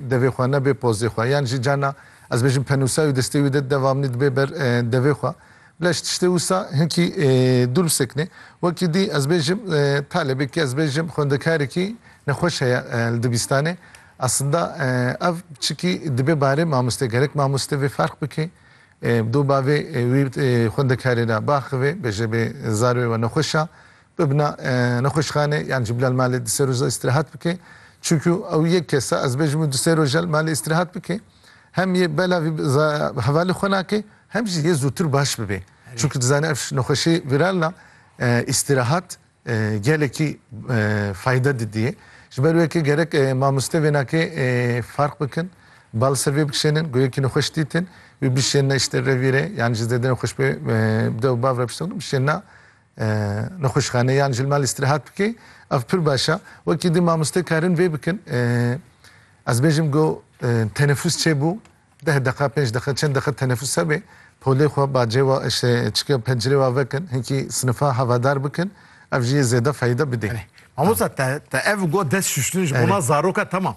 Devê xwe ne bê pozê xwe. Yan jî carna ez bêjim penûsa wî destê wî de deva min dibe ber devê xwe. Bila ji tiştê wisa hinkî dûr bisekinê. Wekî dî ez bêjim talebekî ez bêjim xwendekarekî nexweş heye li dibistanê. Aslında ev çikî dibe barê mamoste gerek mamoste vê ferq bike. Bi do bavê wî xwendekarê de biaxive bêje bê zarê wê nexweş a Bibna nexweşxanê yan jî bila li malê du sê roja îstirahat bike. Çunku ew yek kes e, ez bêjim û du sê roja li malê îstirahat bike. Hem yê bela vî hevalî xwe nake, hem jî yê zûtir baş bibe. Çunku dizane ev nexweşî vîral na, îstirahat gelekî fayde didîye. Ji ber wê ke gerek mamoste vênakê farq bikin, bal li ser vê bikişênin, ku yekî nexweş dîtin, wî bişênine îştê revîrê yan jî zêde nexweş be bi dew û bav re biştexin, bişênine Nexweşxane yan ji li mal îstirahat bike ev pir baş e. Wekî di mamoste karin vê bikin ez bêjim go tenefus çêbû deh deqa pênc deqa çend deqa tenefus hebe polê xwe bacê we işte çike pencirê we vekin hinkî sinifa hevadar bikin ev jî yê zêde feyde bidê. Mamosta te te ev go dest şuştin ji bona zaroka tamam.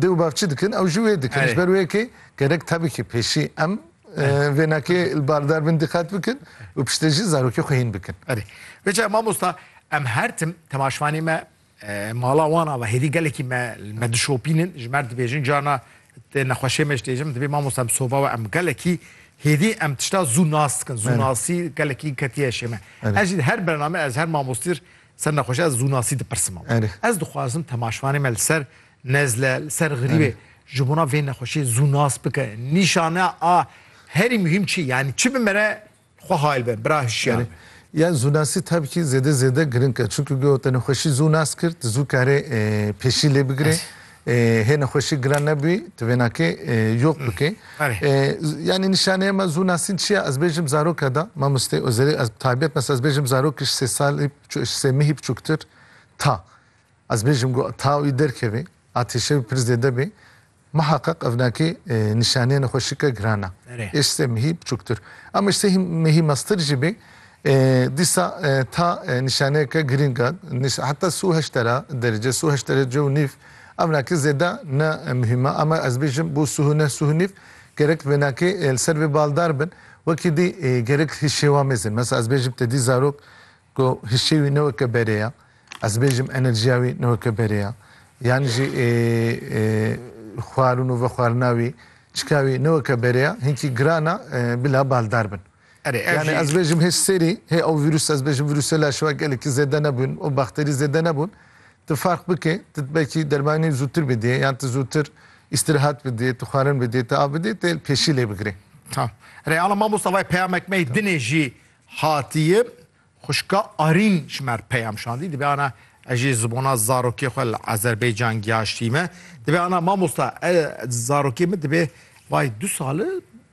Dê û bav çi dikin ew jî wê dikin. Ji ber wê yekê gerek tevîkê pêşî em vênakê li bardar bin diqet bikin û piştê jî zarokê xwe hîn bikin. Erê. Vê çav mamosta em her tim temaşvanê me mala wan ava hêdî gelekî me li me dişopînin ji mer dibêjin carna tê nexweşê me ji tê jim divê mamosta em soba we em gelekî hêdî em tişta zû nas dikin. Zû nasî gelekî ketiye şê me. Ez jî her bername ez her mamostir Ser nexweşe ez zûnasî dipirsim. Ez dixwazim temaşvanê me li ser nezle, li ser xirîbê ji bona vê nexweşiyê zûnas bike. Nîşaneya a herî muhîm çi ye? Yanî çi bi me re xwe hail be, bira hişyar be? Yan zûnasî tabi kî zêde zêde giring e. Çimkî ku te nexweşî zûnas kir, tu zû karê pêşî lê bigirê. Hê nexweşî giran nebûyî tu vênakê yok bikê. Yanî nîşaneya me zû nasîn çi ye? Ez bêjim zaroka da mamostê Ozerî ez bi taybet mes ez bêjim zarokî ji sê salî ji sê mehî biçûktir ta ez bêjim ku ta wî derkeve atêşe wî pir zêde bê miheqeq ev nakê nîşaneya nexweşîke giran e. Ê ji sê mehî biçûktir. Ama ji sê mehî meztir jî bê Dîsa ta nîşaneyeke girîng a. Heta sû heştera derece, sû heştera cû nîv ewnakî zêde ne muhîm a. Ama ez bêjim bo sû neh sû nîv gerek vênakê li ser vê baldar bin. Wekî dî gerek hişê wan mêzin. Mesela ez bêjim te dî zarok ku hişê wî ne weke berê ye. Ez bêjim enerjiya wî ne weke berê ye. Yan jî xwarin û vexwarina wî, çika wî ne weke berê ye. Hinkî giran a bila baldar bin. Erê ev jî. Yani ez bêjim hê serî, hê ew vîrûs ez bêjim vîrûsê laş ve gelekî zêde nebûn û bakterî zêde nebûn. Tu ferq bike, tu dibekî dermanî zûtir bidîyê yan tu zûtir îstîrihat bidîyê, tu xwarin bidîyê, tu av bidîyê tê pêşî lê bigirê. Tamam. Erê ala mamosta vay peyamek me yê dinê jî hatîye. Xwişka Arîn ji me re peyam şandî, dibe ana ez jî zibona zarokê xwe li Azerbaycan giyaştîme. Dibe ana mamosta ez zarokê min dibe vay du sal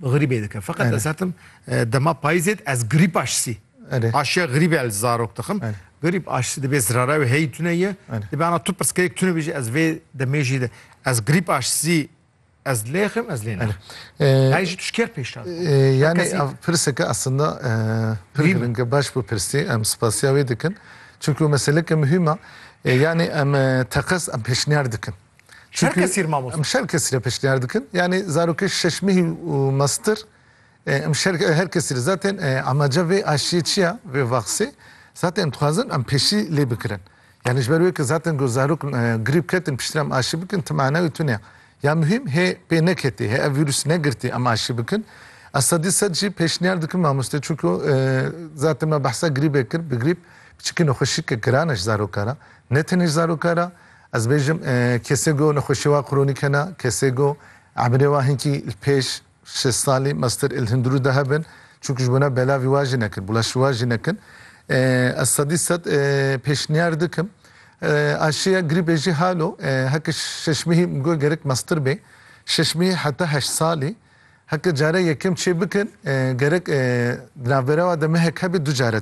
grîbê dikim. Feqet ez hetim dema payîzê ez grîb aşisî. Aşiya grîb el zarok dixim. Grîb aşisî dibe zirara wê hey tune ye. Dibe ana tu pirsgirêk tune bêjî ez vê demê jî de ez grîb aşisî Ez lêxim ez lê naxim. Her jî tu ji kê re pêşniyar dikî? Yanî ev pirseke eslinda pir giring e. Baş bû pirsî. Em spasiya wê dikin. Çimkî meseleke muhîm e. Yanî em teqez em pêşniyar dikin. Ji her kesî re mamoste? Em ji her kesî re pêşniyar dikin. Yanî zarokê şeş mehî û master Em ji her kesî li zaten amaca vê aşiyê çi ya, vê vaksê zaten em dixwazin em pêşî lê bikirin. Yanî ji ber wê ku zaten ku zarok grîp ketin piştre em aşî bikin ti mana wê tune ya. Ya muhîm hê pê neketê, hê ev vîrus negirtî em aşî bikin. Ez sedî sed jî pêşniyar dikim mamoste çunku zaten me behsa grîbê kir, bi grîp biçikî nexweşîyeke giran e ji zaroka re. Ne tenê ji zaroka re ez bêjim kesê ku nexweşiyê wan kronîk hene, kesê ku emirê wan hinkî li pêş Şesalî Master El Hindru de hebin çunku ji bo ne belavî wa jî nekin, bulaşî wa jî nekin. Ez sedî sed pêşniyar dikim. Aşiya grîbê jî halo heke şeşmîhî min got gerek master bê. Şeşmîhî heta heşt salî. Heke care yekem çêbikin gerek di navberewa de mehek hebe du care